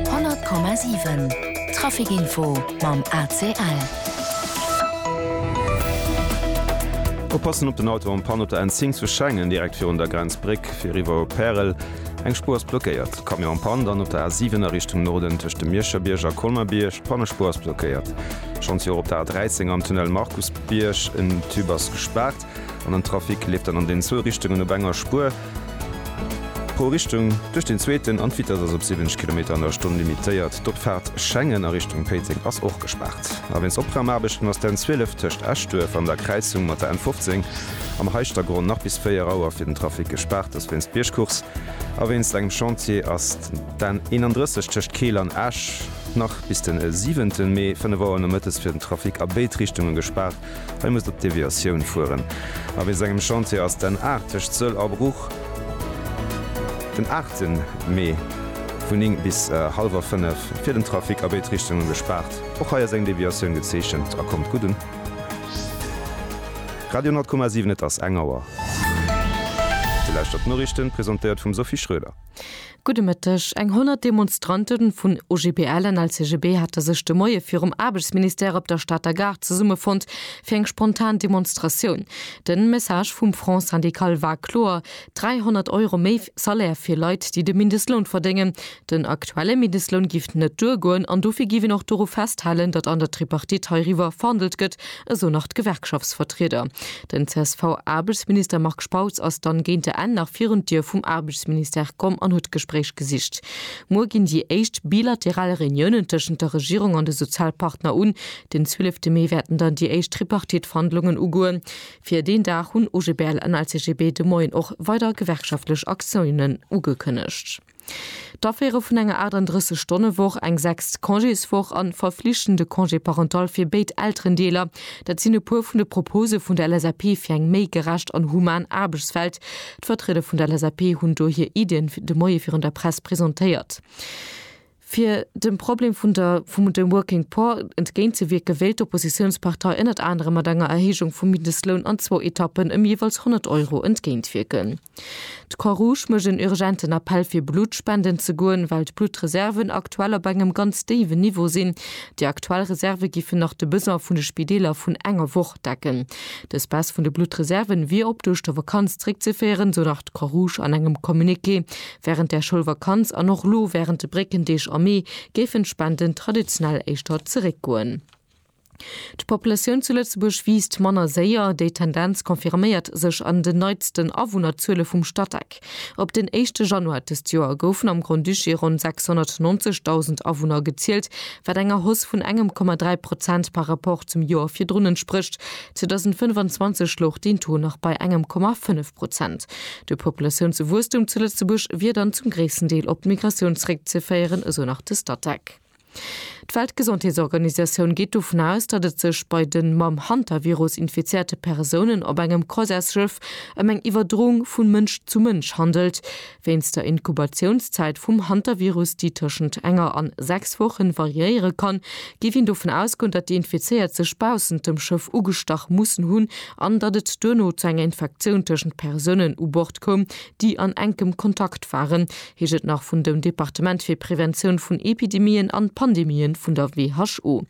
100,7 Trafic Info mam ACL. Oppassen op den Auto am Panne op der N10 zu Schengen, direkt virun der Grenzbréck fir eriwwer op Pärel. Eng Spuer ass blockéiert. Camion am Panne dann op der A7 a Richtung Norden tëscht dem Miescherbierg a Colmer-Bierg. D'Pannespuer ass blockéiert. Schonns jo och op der A13 am Tunnel Markusbierg. En Tube ass gespaart an den Trafic leeft dann an den zwou Richtungen op enger Spuer. Pro Richtung duerch den zweeten an d'Vitess ass op 70 Kilometer an der Stonn limitéiert. D'Opfaart Schengen a Richtung Péiteng ass och gespaart. A wéinst Opraumaarbechten ass d'N 12 tëscht Eschduerf an der Kräizung mat der N 15 am Heischtergronn nach bis 4 Auer fir den Trafic gespaart. Dass wéinst Biergcourse a wéinst engem Chantier ass d'N 31 tëscht Keel an Esch nach bis den 7 Mee 5 Auer nomëttes fir den Trafic a béid Richtunge gespaart. Hei muss der d'Deviatioun fueren. A wéi sengem Chantier ass d'N 80 d'Sëll a Bruch? Den 8 Mee vun 9 bis hallwer 5 fir den Trafic a béid Richtunge gespaart. Och hei ass eng Deviatioun gezeechent a kommt gutt un. Radio 10,7 Et ass eng Auer. Dir lauschtert d'Noriichten, presentéiert vum Sophie Schröder. Gudde Mëtteg. Eng 100 Demonstrante vun OGBL an LCGB hate sech de Moie virum Aarbechtsministère op der Stater Gare zesummefonnt fir eng spontan Demonstratioun. De Message vum Front syndical war kloer, 300 Euro méi Salaire fir Leit, déi de Mindestloun verdéngen. Den aktuelle Mindestloun giff net duergoen an dofir giff een och doru festhalen, datt an der Tripartite heiriwwer verhandelt gëtt, esou nach d'Gewerkschaftsvertrieder. Den CSV-Aarbechtsminister Marc Spautz ass dann géint der Enn nach virun d'Dier vum Aarbechtsministère komm an huet d'Gespréich gesicht. Muer ginn déi éischt bilateral Reuniounen tëschent der Regierung an de Sozialpartner un. Den 12 Mee wäerten dann déi éischt Tripartite-Verhandlungen ugoen. Fir deen Dag hunn OGBL an LCGB de Moien och weider gewerkschaftlech Aktiounen ugekënnegt. D'Aféiere vun enger 38 Stonne Woch, eng sechst Congéswoch an verflichtende Congé parental fir béid Elterendeeler, dat sinn e puer vun de Propose vun der LSAP fir eng méi gerecht an human Aarbechtswelt. D'Vertrieder vun der LSAP hunn do hir Iddien de Moie virun der Press presentéiert. Fir dem Problem vun der vum dem Working Poor entgéint ze wierken, wéilt d'Oppositiounspartei ënnert anerem mat enger Erhéijung vum Mindestloun an zwou Etappen ëm jeeweils 100 Euro entgéint wierken. D'Croix-Rouge mécht en urgenten Appell fir Blutt spenden ze goen, well d'Bluttreserven aktuell op engem ganz déiwen Niveau sinn. Déi aktuell Reserve giffen nach de Besoin vun de Spideeler vun enger Woch decken. Dës Baisse vun de Bluttreserven wier op d'Ouschtervakanz zréckzeféieren, sou nach d'Croix-Rouge an engem Communiqué. Wärend der Schoulvakanz an och lo wärend de Bréckendeeg am Mee géifen d'Spenden traditionell éischter zeréckgoen. D'Populatioun zu Lëtzebuerg wiisst manner séier. Déi Tendenz confirméiert sech an den neitsten Awunnerzuele vum Statec. Op den éischte Januar dëst Joer goufen am Grand-Duché ronn 690.000 Awunner gezielt, wat enger Hausse vun engem Komma dräi Prozent par Rapport zum Joer virdrun entsprécht. 2025 louch deen Taux nach bei engem Komma fënnef Prozent. De Populatiounswuesstum zu Lëtzebuerg wier dann zum gréissten Deel op d'Migratioun zeréckzeféieren, esou nach de Statec. D'Weltgesondheetsorganisatioun geet dovun aus, datt et sech bei de mam Hantavirus infizéierte Persounen op engem Croisièresschëff ëm eng Iwwerdroung vu Mënsch zu Mënsch handelt, wéinst der Inkubatiounszäit vum Hantavirus, déi tëschent enger an sechs Wochen variéiere kann, géif een dovun ausgoen, datt déi Infizéiert sech baussent dem Schëff ugestach mussen hunn an datt et duerno zu enger Infektioun tëschent Persounen u Bord koum, déi an enkem Kontakt waren. heescht et nach vun dem Departement fir Preventioun vun Epidemien an Pandemien vun der WHO.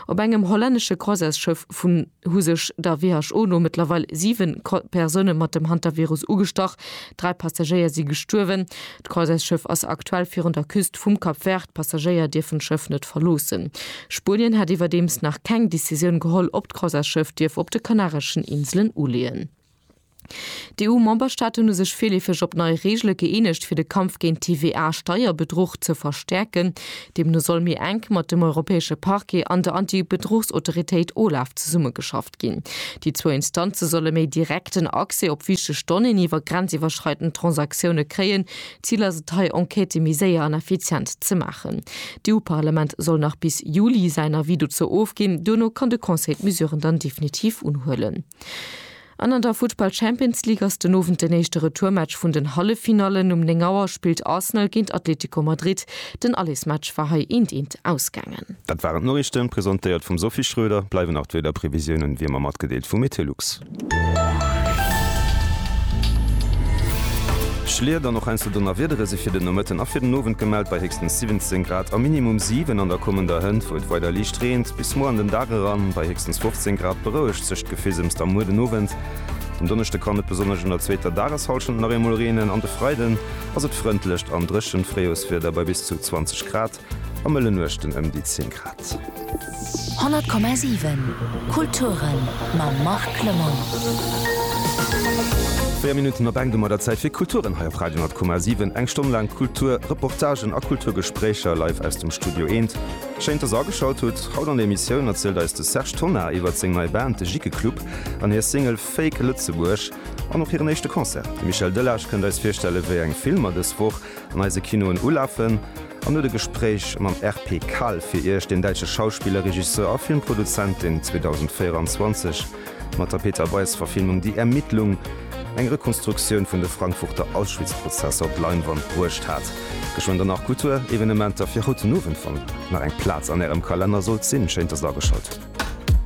Op engem hollännesche Croisesschëff vun hu sech der WHO no mëttlerweil 7 Persoune mat dem Hantavirus ugestach. Dräi Passagéier si gestuerwen. D'Croisesschëff ass aktuell virun der Küst vum Cap Vert. D'Passagéier dierfen d'Schëff net verloossen. Spuenien hätt iwwerdeems nach keng Decisioun geholl, ob d'Croisesschëff dierf op de Kanareschen Inselen uleeën. D'EU-Memberstaat hunn u sech virleefeg op nei Reegele gëeenegt, fir de Kampf géint TVA-Steierbedruch ze verstäerken. Deemno soll méi enk mat dem europäesche Parquet an der Anti-Bedruchsautoritéit OLAF zesummegeschafft ginn. Déi zwou Instanze solle méi direkten Accès op wichteg Donnéeën iwwer grenziwwerschreidend Transaktioune kréien. Zil ass et hei, Enquêtë méi séier an effizient ze maachen. D'EU-Parlament soll nach bis Juli säin Avis dozou ofginn. Duerno kann de Conseil d'Mesuren dann definitiv unhuelen. An an der Futtball Champions League ass den Owend den éischte Retourmatch vun den Halleffinallen. Um 9 Auer spillt Arsenal géint Atletico Madrid. Den Allesmatch war hei eent eent ausgaangen. Dat waren d'Noriichten, presentéiert vum Sophie Schroeder. Bleiwen nach d'Wiederprevisiounen wéi ëmmer matgedeelt vu Meteolux. Schliet an och eenzel Donnerwiedere si fir den Nomëtten a fir den Owend gemellt bei héchstens 17 Grad a minimum 7 an der kommender Hënt, wou et weider liicht reent. Bis muer an den Dag eran bei héchstens 15 Grad berouegt. Sech d'Gefissems da muer den Owend. Den Donneschde kann et besonnesch an der zweeter Dageshallschent nach eemol reenen, an de Freiden ass et frëndlecht an dréchent Fréijoerswieder bei bis zu 20 Grad a mëllen Nuechten ëm déi 10 Grad. 100,7 Kulturen mam Marc Lemon. 4 Minutten op eng domat der Zäit fir Kulturen hei op Radio 10,7. Eng Stonn laang Kultur, Reportagen a Kulturgespréicher live aus dem Studio Eent. Schéin dass der ageschalt hutt. Haut an der Emissioun erzielt eis de Serge Tonnar iwwert seng nei Band de Jikke Club an hir Single Fake Lëtzebuerg an och hiren éischte Concert. De Michel Delage kënnt eis virstellen wéi eng Filmer dës Woch an eise Kinoen ulafen an huet e Gespréich mam RP Kal fir iech, deen däitsche Schauspiller, Regisseur a Filmproduzent deen 2024 mat der Peter Weis-Verfilmung Die Ermittlung eng Rekonstruktioun vun de Frankfurter Auschwitz-Prozesser op d'Leinwand bruecht hat. Geschwënn dann nach Kulturevenementer fir haut den Owend. Wann nach eng Plaz an Ärem Kalenner sollt sinn, schéint dass et ageschalt.